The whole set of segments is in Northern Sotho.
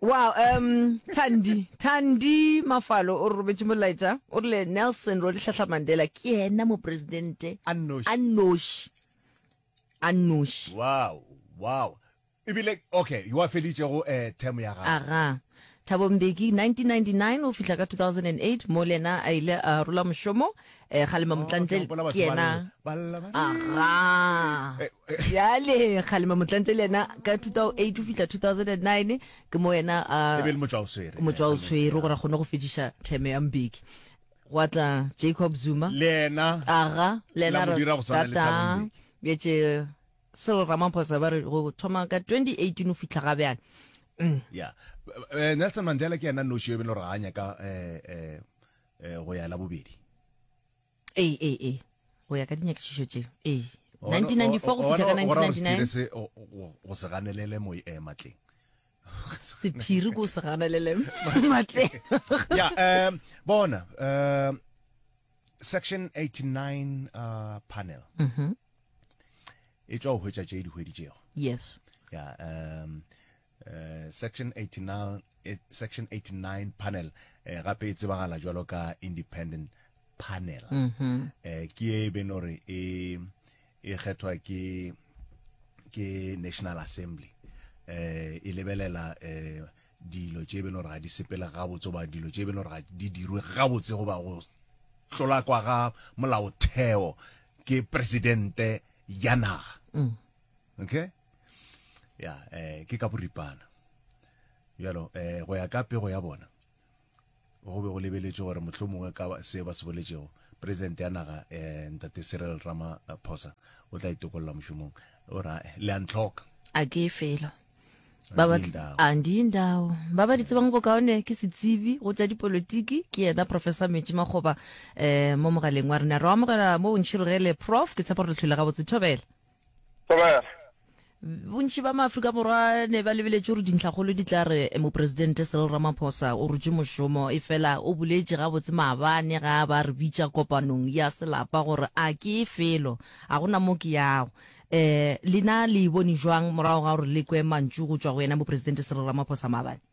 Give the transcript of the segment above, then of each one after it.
Wow, um, Thandi, Thandi Mafalo o robetše molaetša o rile Nelson Rolihlahla Mandela ke yena mopresidente A nnoši. a nnoši a nnoši wow wow ebile okay yo a felitšego eh, term ya gago aga Thabo Mbeki 1999 o fihla ka 2008 mo le yena a ile a rola mošomo Eh, kgalema motlantle ke yena aga yale kgalema motlantle le yena ka 2008 o fitlha 2009 ke mo yena motswa o tshwere gore a kgone go fediša theme ya mbeki gwa tla jacob zuma le yena aga le yena betse selo ramaphosa ba re go thoma ka 2018 o fitlha ga bjana mm. ya eh, nelson mandela ke yena noši yo e bele gore ga a nyaka um eh, go ya la bobedi ee ee ee go ya ka dinyakišišo tše ee 1994 go fihla ka 1999 go se ganelele mo e eh, matleng sephiri ko se ganelele matleng ya um bona um section 89 uh, panel mm -hmm. e tswa go hwetša tše dihwedi tšego yes ya um Eh, section 89 eh, section 89 panel eh, gape e tsebagala jwalo ka independent panel mm -hmm. eh, ke e ben gore e e kgethwa ke ke national assembly eh, e lebelela eh, dilo tše e ben gore ga di sepele gabotse goba dilo tše e ben gore ga di dirwe gabotse goba go hlola kwa ga molaotheo ke presidente ya naga mm. okay ya eh, ke ka boripana bjalo eh, go ya ka pego ya bona go be go lebeletše gore motlho mongwe ka se ba se boletšego president ya naga eh, ntate cyril ramaphosa o tla itokolola mošomong o ra eh, le a ntlhoka a ke felo ba ba Andindawo. andindawo ba ba di tsebang bokaone ke setsibi go tša dipolotiki ke yena professor metši makgoba um mo mogaleng wa rena re amogela mo bontšhirogele prof ke tshepa gore letlhole gabotse thobela bontši ba maaforika borwa ne ba lebeletše gore dintlhakgolo di tla re moporesidente serel ramaphosa o rutše mošomo e fela o boletše gabotse maabane ga ba re bitša kopanong ya selapa gore a ke e felo ga gona mo ke yago um lena le e bone jwang morago ga gore le kwe mantšu go tšwa go yena moporesidente serel ramaphosa maabane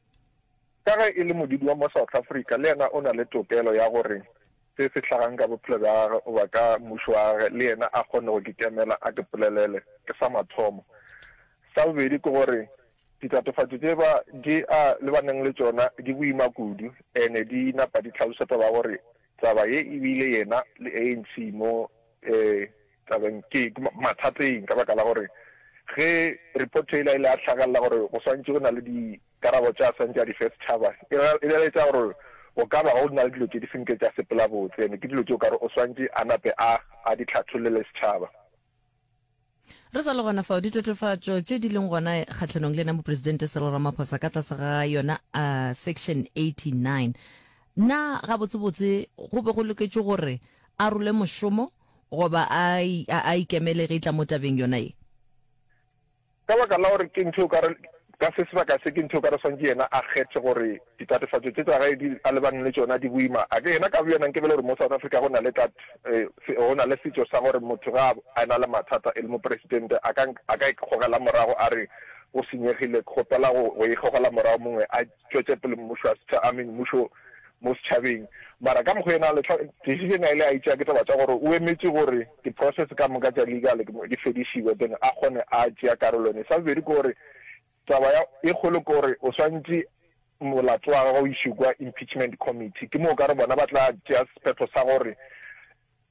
Ka ge e le modudi wa mo South Africa, le yena o na le tokelo ya gore se se hlagang ka bophelo bja gagwe goba ka mmušo wa gagwe le yena a kgone go ke kemela a ke polelele. Ke sa mathomo. Sa bobedi ke gore ditatofatšo tše ba di a le ba neng le tšona di boima kudu ene di napa di tlhalosetsa ba gore taba ye e bile yena le ANC mo eh, Tla be ke ke mathateng ka baka la gore ge report yela e le ya hlagalela gore go swantše go na le dikarabo tša swantše a di fe setšhaba, e ra e laletša gore go ka ba go na le dilo tše di senke tša sepela botse ene ke dilo tše o ka re o swantše a nape a a di hlathollele setšhaba. Re sa le gona fao, ditatofatšo tše di leng gona kgahlanong le yena Mopresidente Cyril Ramaphosa ka tlase ga yona a Section 89, na gabotsebotse go be go loketše gore a role mošomo? Goba a, a, a ikemele ge e tla mo tabeng yona ye. Ka baka la gore ke ntho e o ka re, ka se sebaka se, ke ntho e o ka re swantše yena a kgethe gore ditatofatšo tše tša gae di, a lebane le tšona di boima. A ke yena ka boyena nke bele gore mo South Africa go na le tat, e, se, go na le setšo sa gore motho ge a, a ena le mathata e le mopresidente a ka, a ka ikgogela morago a re o senyegile, kgopela go, go ikgogela morago mongwe a, tšwetšepele mmušo wa setšha, a mean, mmušo mo setšhabeng. Mara ka mokgo yena a letlha, decision a ile a e tšea ke taba tša gore o emetše gore di process ka moka tša legal di fedišiwe then a kgone a tšea karolo yone. Sa bobedi ke gore taba ya e kgolo ke gore o swantše molato wa gagwe o išwe kwa impeachment committee, ke moo o ka re bona ba tla tšea sephetho sa gore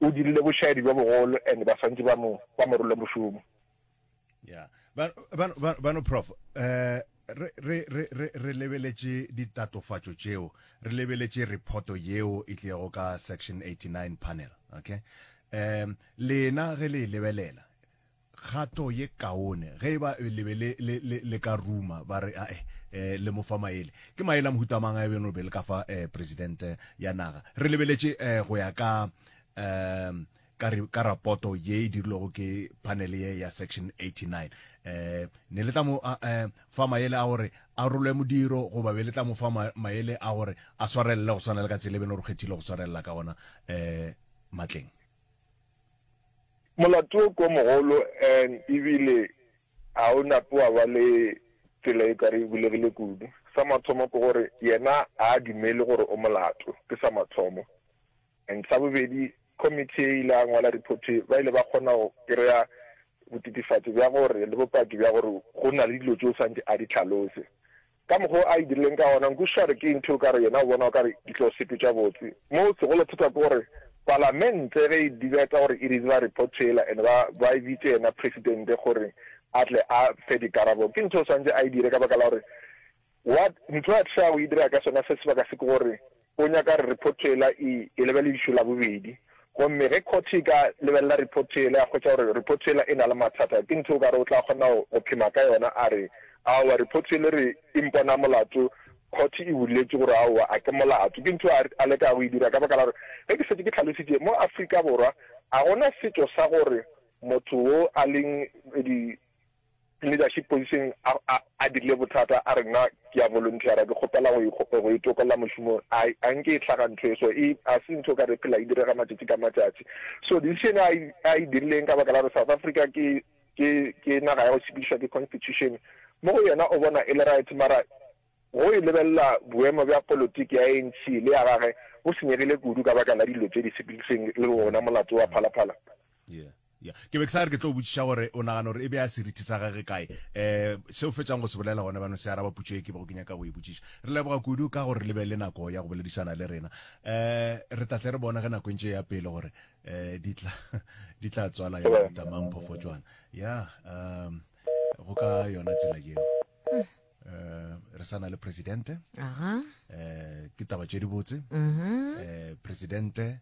o dirile bošaedi bjo bogolo and ba swantše ba mo, ba mo role mošomo. ya bano prof eh, re, re, re, re, re lebeletše ditatofatšo tšeo re lebeletše reporto yeo e tliego ka section 89 panel okay um lena ge le e lebelela kgato ye kaone ge e ba e lebe le, le, le, le ka ruma ba re ae eh, le mofa maele ke maele a mohutamang a beno be le ka fa eh, presidente ya naga re lebeletše eh, go ya ka um ka, re, ka rapoto ye e dirilwego ke panele ye ya section 89 eh, ne le tla mo eh, fa maele a gore a rolwe modiro goba be le tla mo fa maele a gore a swarelele go swana le ka tsela e bene gore kgethile go swarelela ka gona eh, matleng molato o ko mogolo and ebile ga o nape wa ba le tsela e kare e bulegile kudu sa mathomo ke gore yena a dumele gore o molato ke sa mathomo And sa bobedi, committee ye ile ya ngwala report ba ile ba kgona go kry-a botitifatso bja gore, le bopaki bja gore go na le dilo tše o swantše a di hlalose. Ka mokgwa o a e dirileng ka gona, nkwešišare ke ntho o ka re yena o bona o ka re di tlo sepetša botse. Moo se golo thata ke gore Palamente ge e dibeta gore e receive-a report yela and ba ba e bitše yena Presidente gore a tle a fe dikarabo, ke ntho o swantše a e dire ka baka la gore What ntho a tla go e dira ka sona se sebaka se ke gore o nyaka gore report yela e e lebeledišwe la bobedi, gomme ge court e ka lebelela report yela ya hwetša gore report yela e na le mathata ke ntho o ka re o tla kgona go go phema ka yona a re aowa report yela e re e mpona molato court e buletše gore aowa a ke molato. Ke ntho a a leka go e dira ka baka la gore ge ke šetše ke tlhalositše mo Afrika Borwa a gona setšo sa gore motho wo a leng di leadership position a, a, a dirile bothata, a re nna ke a volunteera, ke kgopela go, e, go e tokolla mošomong. A, a nke e hlaga ntho e so, e, a se ntho ka re phela e direga matšatši ka matšatši. So decision a, a e dirileng ka baka la gore South Africa ke, ke, ke naga ya go sepedišwa ke constitution, mo go yena o bona e le right, mara go e lebelela boemo bja politiki ya ANC le ya gage bo senyegile kudu ka baka la dilo tše di sepediseng le wona molato wa Phala Phala. Yeah. Ya, ke be ke sa re ke tlo o botšiša gore o nagana gore e bea serithi sa gage kae. Um, se o fetšang go se bolela gona bjano se araba putšo ye ke bego ke nyaka go e botšiša. Re leboga kudu ka gore le be le nako ya go boledišana le rena. Um, re tla tle re bone ge nako e ntše e ya pele gore um di tla di tla tswala ya mohuta mang phofotšwana. Ya, um, go ka yona tsela yeo. Um, re sa na le presidente. Aha. Um, ke taba tše dibotse. Um, presidente